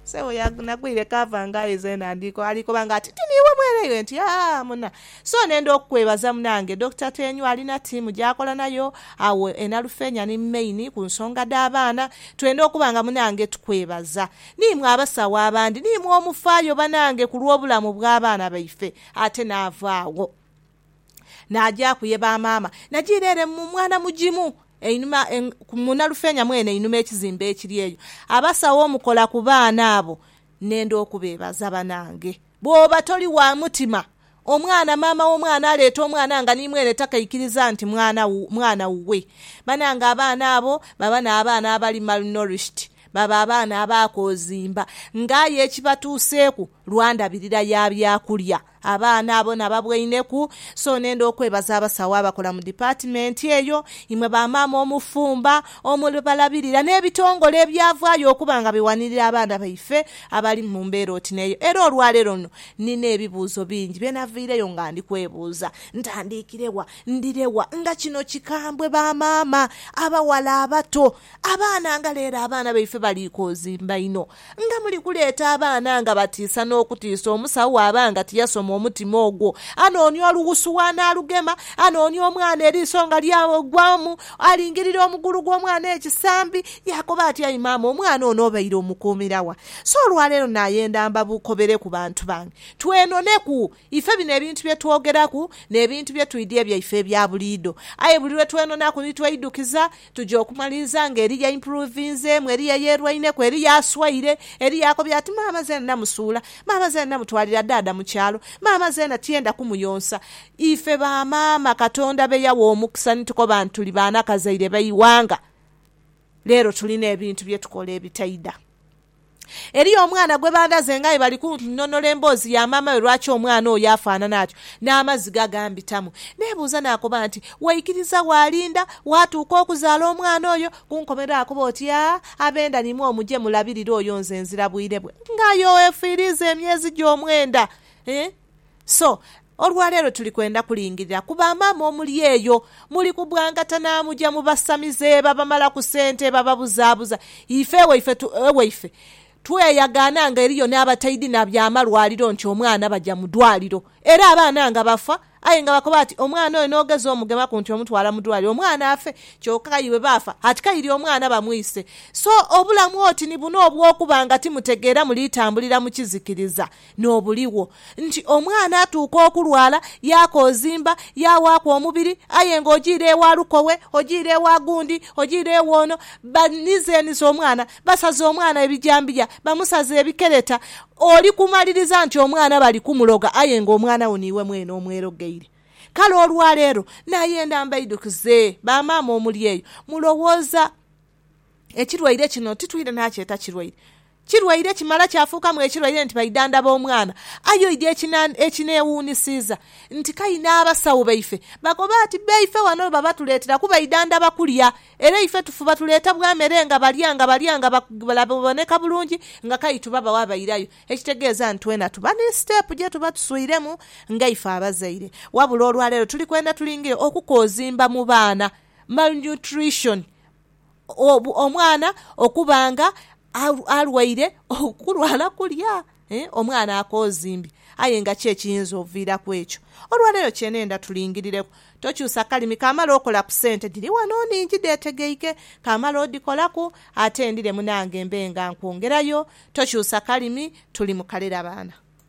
Sebo nagwire cover nga aye zena ali koba nga ati ti niiwe mweleire nti aa muna. So nenda okukwebaza munange Dokita Tenywa ali na tiimu gyakola nayo agho e Nalufeenya ni main ku nsonga dha baana. Twenda okuba nga munange tukwebaza. Ni mwe abasawo abandi ni mwe omufaayo banange ku lw'obulamu bwa baana baife ate naava agho. Naagyaku ye ba maama. Najiira ere mu mwana mugimu einhuma mu Nalufeenya mwene einhuma ekizimbe ekiri eyo. Abasawo omukola ku baana abo nenda okubeebaza banange. Bwooba toli wa mutima, omwana, maama w'omwana aleeta omwana nga ni mwene takaikiriza nti mwana, mwana wuwe. Banange abaana abo baba n'abaana abali malnourished, baba abaana abaakoozimba. Nga aye ekibatuuseeku lwa ndabirira ya byakulya. Abaana abo nababwaineku, so nenda okwebaza abasawo abakola mu dipatimenti eyo, imwe ba maama omufumba, omubalabirira, n'ebitongole ebyavaayo okuba nga biwanirira abaana baife abali mu mbeera oti n'eyo. Era olwa leero luno nnina ebibuuzo bingi bye navaireyo nga ndi kwebuuza. Ntandiikire wa? Ndire wa? Nga kino kikambwe ba maama, abawala abato, abaana nga leero abaana baife baliikoozimba inho. Nga muli kuleeta abaana nga batiisa n'okutiisa omusawo bw'aba nga tiyasoma omutima ogwo. Anoonia olughusu w'anaalugema, anoonia omwana eriiso nga lyagwamu, alingirira omugulu gw'omwana ekisambi, yaakoba ati, Ayi maama, omwana ono obaire omukuumira wa? So olwa leero naayenda mbabukobere ku bantu bange, twenoneku. Ife bino ebintu bye twogeraku n'ebintu bye twidha ebyaife ebya buliidho. Aye buli lwe twenonaku ni tweidukiza, Tuja okumaliriza nga Eliya aimpuruvinzeemu, Eliya yeerwaineku, Eliya aswaire. Eliya akobye ati, Maama zeena namusuula. Maama zeena namutwalira dhaadha mu kyalo. Maama zeena tiyenda kumuyonsa. Ife ba maama Katonda be yawa omukisa ni tukoba nti tuli baana kazaire ba ighanga, leero tulina ebintu bye tukola ebitaidha. Eriyo omwana gwe bandhaze ng'aye bali kunnonola emboozi ya maamawe lwaki omwana oyo afaanana atyo. N'amaziga gambitamu. Neebuuza naakoba nti, Waikiriza waalinda waatuuka okuzaala omwana oyo? Ku nkomerero akoba oti, Aa, abenda ni mwo muje mulabirire oyo nze nzira bwire bwe. Ng'aye oefiiriiza emyezi gye omwenda! Eeh! So, olwa leero tuli kwenda kulingirira ku ba maama omuli eyo. Muli kubwangata naamuja mu basamize, babamala ku sente, bababuzaabuza. Ife ewaife tu, ewaife tweyagaana nga eriyo n'abataidhina bya malwaliro nti omwana baja mu dwaliro. Era abaana nga bafa, aye nga bakoba bati, Omwana oyo n'ogeza omugemaku nti omutwala mu dwaliro, omwana afe. Kyoka aye bwe baafa, ati kaire omwana bamwise. So, obulamu oti ni buno obw'okuba nga timutegeera muliitambulira mu kizikiriza. N'obuligho nti omwana atuuka okulwala, yaakoozimba, yaawaaku omubiri, aye nga ojiire ewa lukowe, ojiire ewa gundi, ojiire ewa ono, banizeniza omwana, basaza omwana ebijambiya, bamusaza ebikereta, oli kumaliriza nti omwana bali kumuloga aye nga omwana wo niiwe mwene omwerogeire. Kale olwaleero nayenda mbaidhukize bamaama omuli eyo, mulowooza Ekirwaire kino titwidha nakyeta kirwaire. Kirwaire kimala kyafuukamu ekirwaire nti baidhandhaba omwana. Aye oidhi ekinewuunhisiiza nti k'ayi n'abasawo baife bakoba ati baife ghano baba batuleetera kuba idhandhaba kulya. Era ife tufuba tuleetabwa mere nga balya nga balya nga baboneka bulungi nga k'ayi tubabawa bairayo. Ekitegeeza nti twena tuba ni siteepu gye tuba tuswiremu nga ife abazaire. Wabula olwaleero tuli kwenda tulinge okukoozimba mu baana malnutrition. omwana okuba nga alwaire okulwala kulya, omwana akoozimbye aye nga ki ekiyinza oviiraku ekyo. Olwaleero kye neenda tulingirireku, tokyusa kalimi kamala okola ku sente. Dhiri ghano nnhingi dheetegeike, kamala odhikolaku ate ndhire munange mbe nga nkwongerayo. Tokyusa kalimi, tuli mu kalerabaana.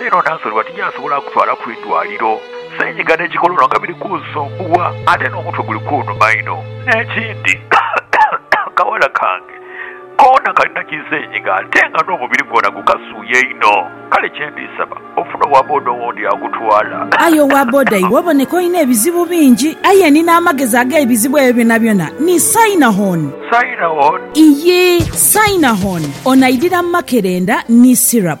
Leero Nanzalibwa tijasobola kutwala ku idwaliro. Senyiga ne kikolono nga biri kunsumbuwa ate n'omutwe guli kunuma inho. N'ekindi, akawala kange koona kalina ki senyiga ate nga n'omubiri gwona gukasuuya inho. Kale kye ndi saba ofune owa boda owundi akutwala. Aye owa boda iwe oboneka olina ebizibu bingi. Aye ni n'amagezi ag'ebizibu ebyo byonabyona ni Sainahon. Sainahon? Iyii, Sainahon. Ono aidhira makerenda ni syrup.